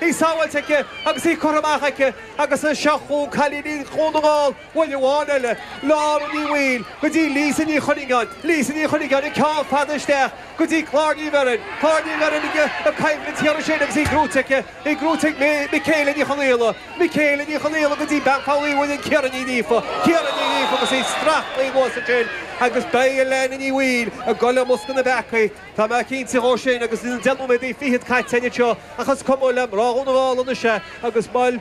í sábháilte aici agus í curtha amach aici agus seo chugainn cailíní Dhún na nGall, bhuel amháin eile, Lára Ní Bhaoill go dtí Lisa Ní Chuinneagáin, Lisa Ní Chuinneagáin an ceann fada isteach go dtí Clár Ní Bheirn, Clár Ní Bheirn ag coimhlint thiar ansin agus í gnóite aici, í gnóite ag Michaela Ní Chonaola, Michaela Ní Chonaola go dtí bean Pholl Uí Mhuirinn, Ciara Ní Ghríofa, Ciara Ní Ghríofa agus í strachailte anuas ansin agus beidh Elaine Ní Bhaoill ag dul i mbosca na bpeacaí, Tá mé cinnte dhó sin, agus na deich nóiméad fichead caite anseo, ach is cuma le mná Dhún na nGall anois é, agus bhuel,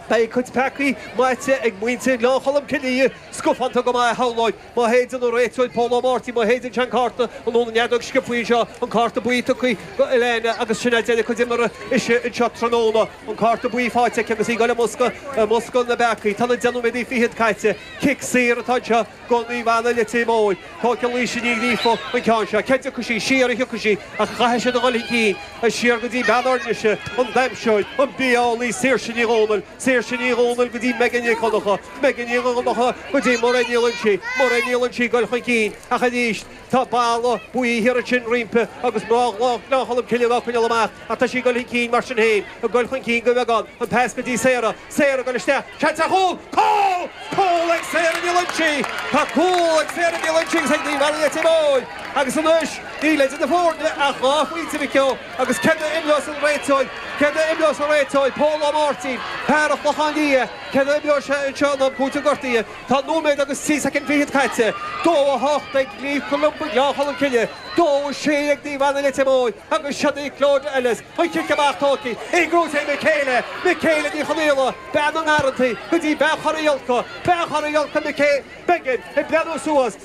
beidh a cuid peacaí maite ag muintir Ghleann Cholm Cille, scafánta go maith, shamhlóinn, má shéideann an réiteoir Pól Ó Máirtín, má shéideann sé an cárta, nó an fheadóg sciobtha anseo, an cárta buí tugtha do Elaine, agus sin é deireadh a cuid imeartha sise anseo tráthnóna, an cárta buí faighte aici agus í ag dul i mbosca na bpeacaí. Tá na deich nóiméad fichead caite. Cic saor atá anseo. do Naomh Anna Leitir Móir, tógfaidh Laoise Ní Ghríofa an ceann seo, cé dtiocfaidh sí siar a thiocfaidh sí ach caithfidh siad a dhul chun cinn, siar go dtí bean Fhoirnise, an damhsóir, an bia-eolaí Saoirse Ní Dhomhnaill, Saoirse Ní Dhomhnaill go dtí Megan Nic Dhonncha, Megan Nic Dhonncha go dtí Muireann Ní Loingsigh, Muireann Ní Loingsigh ag goil chun cinn ach arís. Tá balla buí thiar ansin roimpi agus mná Ghleann Cholm Cille dá coinneáil amach, ach tá sí ag dul chun cinn mar sin féin, ag dul chun cinn go bhfágann, an pas go dtí Sarah, Sarah ag dul isteach, seans ar chúl, cúl! Cúl ag Sarah Ní Loingsigh! Tá cúl ag Sarah Ní Loingsigh agus ag Naomh Anna Leitir Móir agus anois níl idir na foirne ach dhá phointe, a mhic ó, agus céard a imreos an réiteoir, céard a imreos an réiteoir, Pól Ó Máirtín, fear an Chlochán Liath, céard a imreos sé anseo in am cúitimh gortuithe? Tá nóiméad agus trí soicind fichead caite. Dó a hocht ag Naomh Columba, Gleann Cholm Cille. Dó a sé ag Naomh Anna, Leitir Móir. Agus seo í Clodagh Ellis. An cic amach tógtha. Í gnóite ag Michaela. Michaela Ní Chonaola, bean na ngarrantaí, go dtí bean Chorra Dholca. Bean Chorra Dholca, Michaela. Megan ag breathnú suas.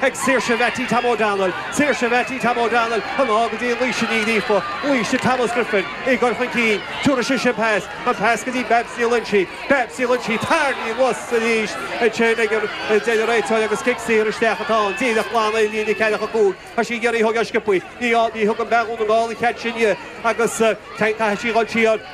Ag Saoirse Mheaití Tom O'Donnell, Saoirse Mheaití Tom O'Donnell, anall go dtí Laoise Ní Ghríofa, Laoise Thomas Griffin, ag goil chun cinn, tabharfaidh sise an pas, an pas go dtí Babs Ní Loingsigh, Babs Ní Loingsigh, tarraingthe anuas arís ansin a deir an réiteoir agus cic saor isteach atá ann, díreach glan ar líne ceathracha cúig, tá sí ag iarraidh a thógáil sciopthaí, ní thugann fear Dhún na nGall an cead sin di agus caithfidh sí dhul siar.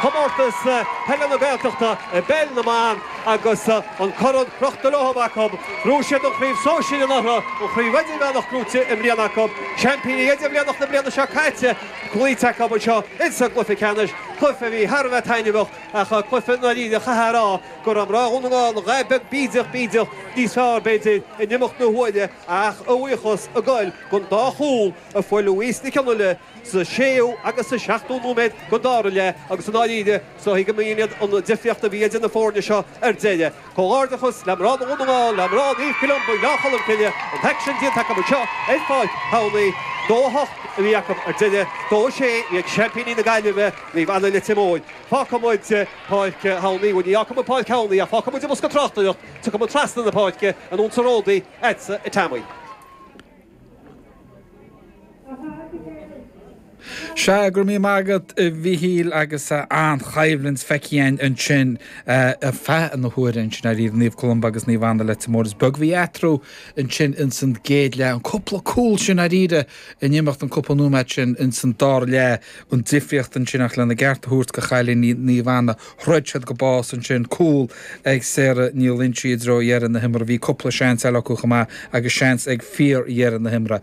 Comórtas Peile na Gaeltachta i bPeil na mBan agus an corn crochta leo acu. Ghnóthaigh siad an chraobh sóisir anuraidh, an chraobh idirmheánach gnóite i mbliana acu, seaimpíní idirmheánacha na bliana seo caite cloíte acu anseo insa gcluiche ceannais, cluiche a bhí thar a bheith taitneamhach ach cluiche i ndáiríre a chaithfeá a rá go raibh mná Dhún na nGall a dhath beag bídeach, bídeach níos fearr, b'fhéidir, in imeacht na huaire ach a bhuíochas ag goil don dá chúl a fuair Louise Nic Fhionnaile, sa séú agus sa seachtú nóiméad den dara leath agus i ndáiríre, samhlaím go mb'in iad an difríocht a bhí idir na foirne seo ar deireadh. Comhghairdeachas le mná Dhún na nGall, le mná Naomh Columba, Gleann Cholm Cille, an t-aicsean déanta acu seo ar Pháirc Thamhnaigh. Dó a hocht a bhí acu ar deireadh, dó a sé iad seaimpíní na Gaillimhe, Naomh Anna Leitir Móir. Fágfaidh muid Páirc Thamhnaigh, bhuel ní fhágfaidh muid Páirc Thamhnaigh ach fágfaidh muid an bosca tráchtaireachta, tiocfaidh muid trasna na páirce, anonn sa ródaí, ait sa Teampaí. Sea, go raibh míle maith agat a Mhichíl agus an-choimhlint feicthe ansin ar feadh na huaire ansin dáiríre Naomh Columba agus Naomh Anna Leitir Móir is beag a bhí eatarthu ansin ins an gcéad leath. An cúpla cúl sin dáiríre in imeacht an cúpla nóiméad sin ins an dara leath an difríocht ansin ach lena gceart a thabhairt do chailíní Naomh Anna. Throid siad go bás ansin. Cúl ag Sarah Ní Loingsigh i dtreo dheireadh na himeartha. Bhí cúpla seans eile acu chomh maith agus seans ag fíordheireadh na himeartha.